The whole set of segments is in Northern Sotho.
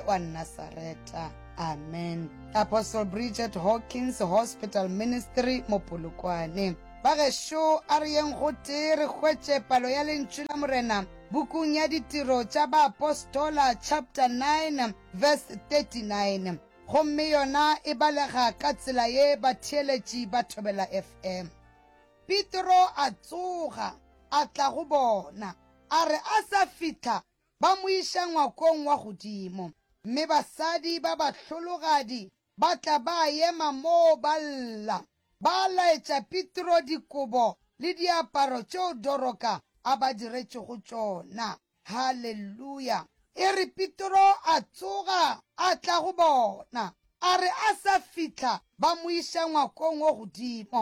wa Nasareta. Amen. Apostle Bridget Hawkins Hospital Ministry Mopolokwane. Bagešo a re yeng gotee re hwetše palo ya Lentšu la Morena bukung ya Ditiro tša Baapostola chapter 9 verse 39 gomme yona e balega ka tsela ye batheeletši ba thobela FM. Petro a tsoga a tla go bona, a re a sa fihla ba mo iša ngwakong wa godimo, mme basadi ba bahlologadi ba tla ba ema moo ba lla. Ba laetša Petro dikobo le diaparo tšeo Doroka a ba diretšego tšona. Haleluya! E re Petro a tsoga a tla go bona, a re a sa fihla ba mo iša ngwakong wo godimo,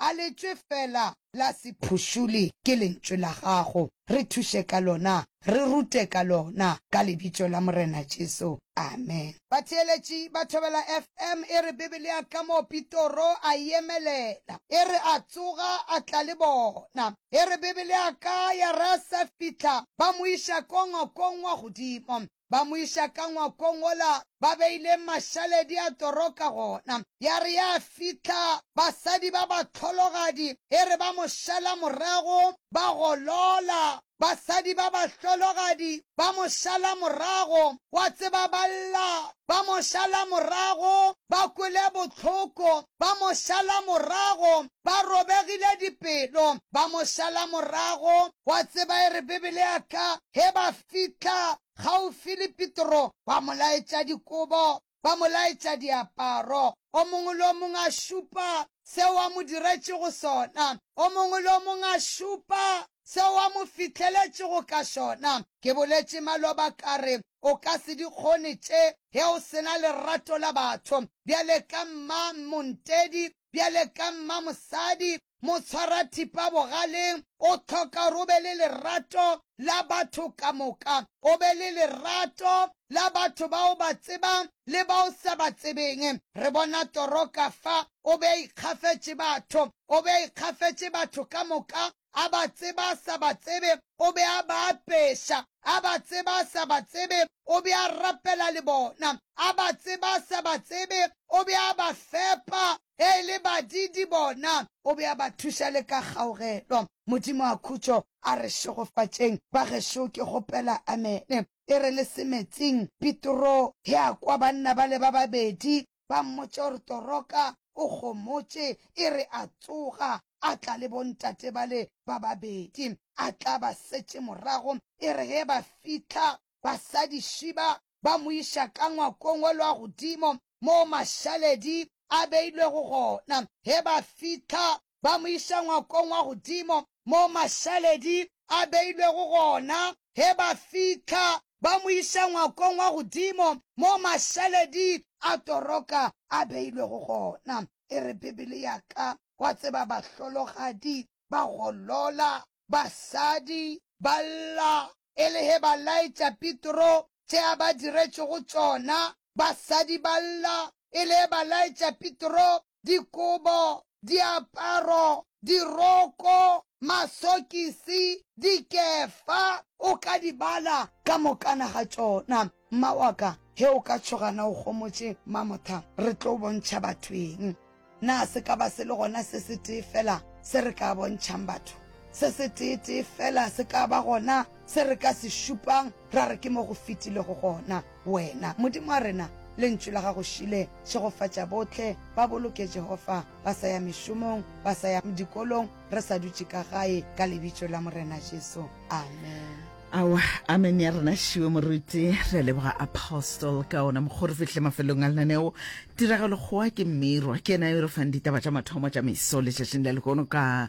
A letšwe fela la sephušuli ke Lentšu la Gago. Re thuše ka Lona. Re rute ka Lona, ka Lebitso la Morena Jesu. Amen. Batheeletši ba Thobela FM e re Biblia ka mo Pitoro a e emelela. E re a tsoga a tla le bona. E re Biblia ka ya re a sa fihla ba mo iša ko ngokong wa godimo. ba mo iša ka ngwakong wola ba beileng mašaledi a toroka gona. Ya re ya fihla, basadi ba bahlologadi e re ba mo šala morago, ba golola. Basadi ba bahlologadi ba mo šala morago, wa tseba, ba lla, ba mo šala morago, ba kwele bohloko, ba mo šala morago, ba robegile dipelo, ba mo šala morago. Wa tseba, e re Bibele ya ka, ge ba fihla kgaufsi le Petro, ba mo laetša dikobo, ba mo laetša diaparo, o mongwe le o mongwe a šupa seo a mo diretšego sona, o mongwe le o mongwe a šupa seo a mo fihleletšego ka sona. Ke boletše maloba ka re, O ka se di kgone tše ge o se na lerato la batho. Bjale ka mma, Montedi, Bjale ka mmamosadi, motshwarathipa bogaleng, o hloka gore o be le lerato la batho ka moka, o be le lerato la batho ba o ba tsebang le ba o sa ba tsebeng. Re bona Toro ka fa, o be a ikgafetše batho, o be a ikgafetše batho ka moka, a ba tseba a sa ba tsebe, o be a ba apeša, a ba tseba a sa ba tsebe, o be a rapela le bona, a ba tseba a sa ba tsebe, o be a ba fepa ge e le badiidi bona, o be a ba thuša le ka kgaugelo. Modimo a khutšo a re šegofatšeng. Bagešo, ke kgopela amene e re le se metsing. Petro ge a kwa banna bale ba babedi ba mmotša gore toroka o kgomotše e re a tsoga a tla le bontate bale ba babedi a tla ba setše morago e re ge ba fihla basadi šiba ba mo iša ka ngwakong wa lwa godimo moo mašaledi a beilwego gona ge ba fihla ba mo iša ngwakong wa godimo moo mašaledi a beilwego gona. Ge ba fihla, ba mo iša ngwakong wa godimo moo mašaledi a toroka a beilwego gona. E re Bibele ya ka, wa tseba, bahlologadi ba golola, basadi ba lla. E le ge ba laetša Petro tše a ba diretšego tšona, basadi ba lla. E le ge ba laetša Petro dikobo, diaparo, diroko, masokisi, dikefa, o ka di bala ka mokana ga tšona. Mma wa ka, ge o ka tšhoga na o gomotše Mamotha, re tlo o bontšha batho eng? Na se ka ba se le gona se setee feela se re ka bontšhang batho? Se setee-tee feela se ka ba gona se re ka se šupang ra re ke mo go fetilego gona. Wena, Modimo wa rena, Lentšu la gago šele šegofatša bohle ba boloke Jehofa, ba sa ya mešomong, ba sa ya dikolong, re sa dutše ka gae, ka Lebitso la Morena Jesu. Amen. Awa, amen ya rena šiwe moruti. Re a leboga Apostle ka ona mokgwa re fihle mafelong a lenaneo. Tiragalo kgowa ke mmirwa ke ena yo re fang ditaba tša mathomo tša meso letšatšing la lehono ka